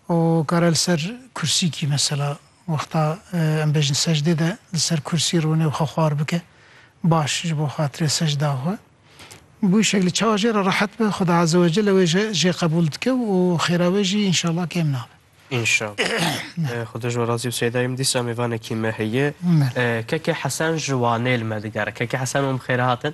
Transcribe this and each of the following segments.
Û kare li ser kursîkî mesela wexta em bêjin secdê de li ser kursî rûne û xwe xwar bike baş ji bo xatirê secda xwe bi wî şeklî çawa jê re rehet be Xuda Azewecelle wê jê qebûl dike û xêra wê jî înşallah kêm nabe. Înşallah. Xuda ji we razî be Seyda min dîsa mêvanekî me heye. Keke Hesen ji Wanê li me digere. Keke Hesen wan bi xêr hatin.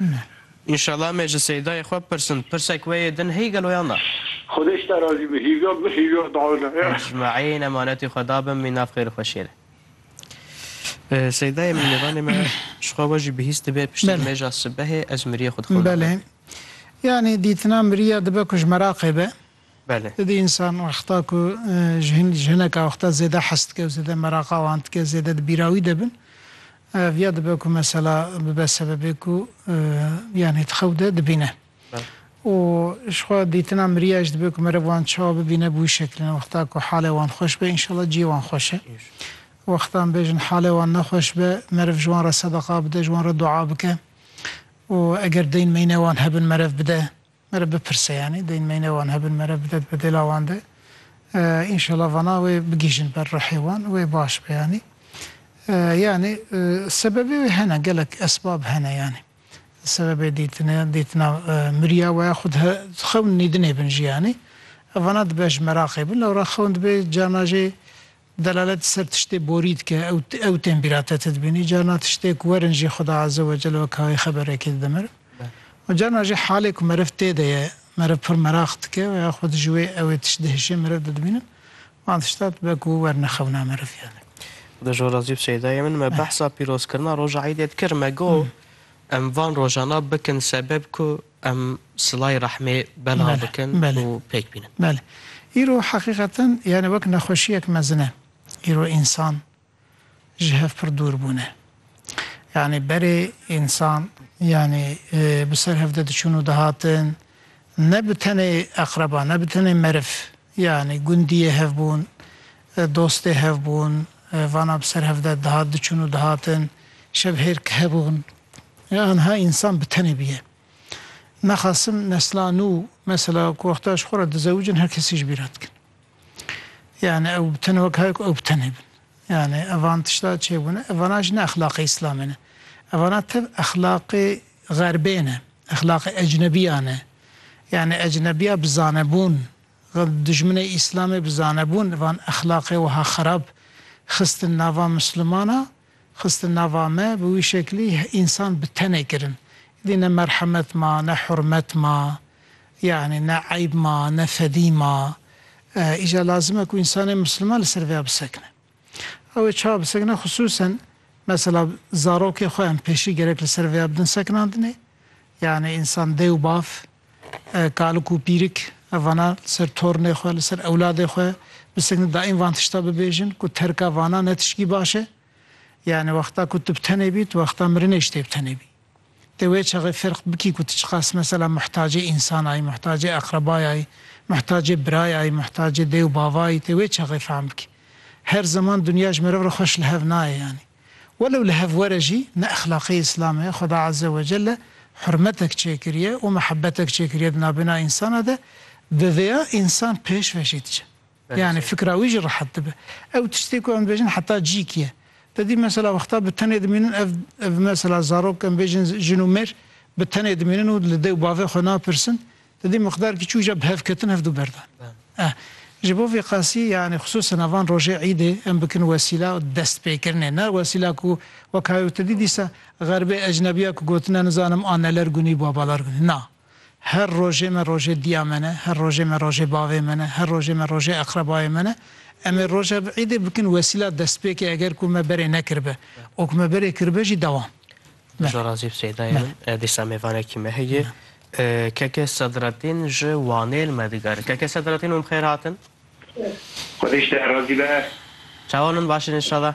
Ne. Înşallah me ji Seydayê xwe pirsin, pirsek wê yê din hî gelo yan na? Xwedê ji te razî be hîrya min hîrya dawine. Ji Maîn emanetê xwe dabin mînav xêr û xweşiyê re. Seydayê min mêvanê me ji xwe we jî bi hîs dibe piştî nimêja sibehê ez miriyê xwe dixwim navê Belê. Yanî dîtina miriya dibe ku ji meraqê be. Belê. Di însan wexta ku ji hin ji hineka wexta zêde hes dike û zêde meraqa wan dike zêde di bîra wî de bin viya dibe ku mesela bibe sebebê ku yanî di xew de dibîne. Belê. Û ji xwe dîtina miriya ji dibe ku meriv wan çawa bibîne bi wî şekilê ne wexta ku halê wan xweş be înşallah ciyê wan xweş e. Înşallah. Wextan bêjin halê wan ne xweş be meriv ji wan re sedeqa bide ji wan re dua bike û eger deyn meyne wan hebin meriv bide. Mere bipirse yanî deyn meyne wan hebin mere bide dibe dêla wan de înşela vana wê bigihîjin ber ruhê wan wê baş be yanî yanî sebebê wê hene gelek esbab hene yanî sebebê dîtine dîtina miriya we ya xwe di xewn nîdinê bin jî yanî vana dibe ji meraqê bin lewra xewn dibê carna jê Delalet li ser tiştê borî dike, ew tên bîra te ti dibînî. Carna tiştê ku werin jî Xuda Azze ve Celle wek hayê xeberekê dide meriv. Û carna jî halê ku meriv tê de ye, meriv pir meraq dike û ya xwed ji wê ewê tişt dihişê meriv didibînin. Wan tişta dibe ku wer nexewna meriv yanî. Di jora zî Seydayê min me behsa pîrozkirina roja Eîdê dikir. Me got em van rojana bikin sebeb ku Em silayê rehmê belav bikin û pêk bînin. Belê. Îro heqîqeten yanî wek nexweşiyek mezin e. Îro însan ji hev pir dûr bûne. Yanî berê însan yanî bi ser hev de diçûn û dihatin ne bi tenê eqreba ne bi tenê meriv, Yanî gundiyê hevbûn, dostê hevbûn, vana bi ser hev de dihat diçûn û dihatin, şevhêrk hebûn. Anha însan bi tenê bûye. Naxasim nesla nû mesela ku wexta ji xwe re dizewicin her kesî ji bîr re dikin. Yanî ew bi tenê wek haya ku ew bi tenê bin. Yanî evan tişta çêbûne, evana jî ne exlaqê îslamê ne. Evana tev exlaqê xerbê ne, exlaqê ecnebiyan ne. Yanî ecnebiya bi zanebûn, dijminê îslamê bi zanebûn van exlaqê wiha xerab xistin nava mislimana, xistin nava me, bi wî şeklî însan bi tenê kirin. Îdî ne merhemet ma, ne hurmet ma, Yanî ne eyb ma, ne fedî ma. Îcar lazim e ku însanê misliman li ser vê ya bisekine. Ew ê çawa bisekine xisûsen mesela zarokê xwe em pêşî gerek li ser vê ya bidin sekinandinê. Yanî însan dê û bav, kalik û pîrik evana li ser tornê xwe, li ser ewladê xwe bisekine daîm van tişta bibêjin ku terka vana ne tişkî baş e. Yanî wexta ku tu bi tenê bî, tu wexta mirinê ji te bi tenê bî. Dê wê çaxê ferq bikî ku tu çiqas mesela muhtacê însan ayî, muhtacê eqrebay ayî, muhtacê birayê ayî, muhtacê dê û bava ayî, dê wê çaxê fehm bikî. Her zeman dinya ji meriv re xweş li hev nayê yanî. Welew li hev were jî ne exlaqê Îslamê ye, Xweda Azze ve Celle hurmetek çêkiriye û mihebetek çêkiriye di navbêna însanan de, bi vêya însan pêşve jî diçe. Yanî fikra wî jî rehet dibe. Ew tiştê ku em dibêjin heta cîk ye. Te dît mesela wexta bi tenê dimînin ev ev mesela zarok em bêjin jin û mêr bi tenê dimînin û li dê û bavê xwe napirsin. Te dît miqdar kî çû ja bi hev ketin hev dû berdan. Eh ji bo vê qasî yanî xisûsen a van rojê îdê em bikin wesîla destpêkirinê ne wesîla ku wek hay û te dît dîsa xerbê ecnebiya ku gotine nizanim aneler gunî babalar gunî na. Her rojê me rojê diya me ne, her rojê me rojê bavê me ne, her rojê me rojê eqrebayê me ne. Em ê roja vê îdê bikin wesîla destpêkê eger ku me berê nekiribe û ku me berê kiribe jî dewam. Bijî razî bi Seydayê min. Dîsa mêvanekî me heye. Keke Sedretîn ji Wanê li me digere. Keke Sedretîn hûn bi xêr hatin. Xwedê ji te razî be. Çawa hûn in baş in înşallah.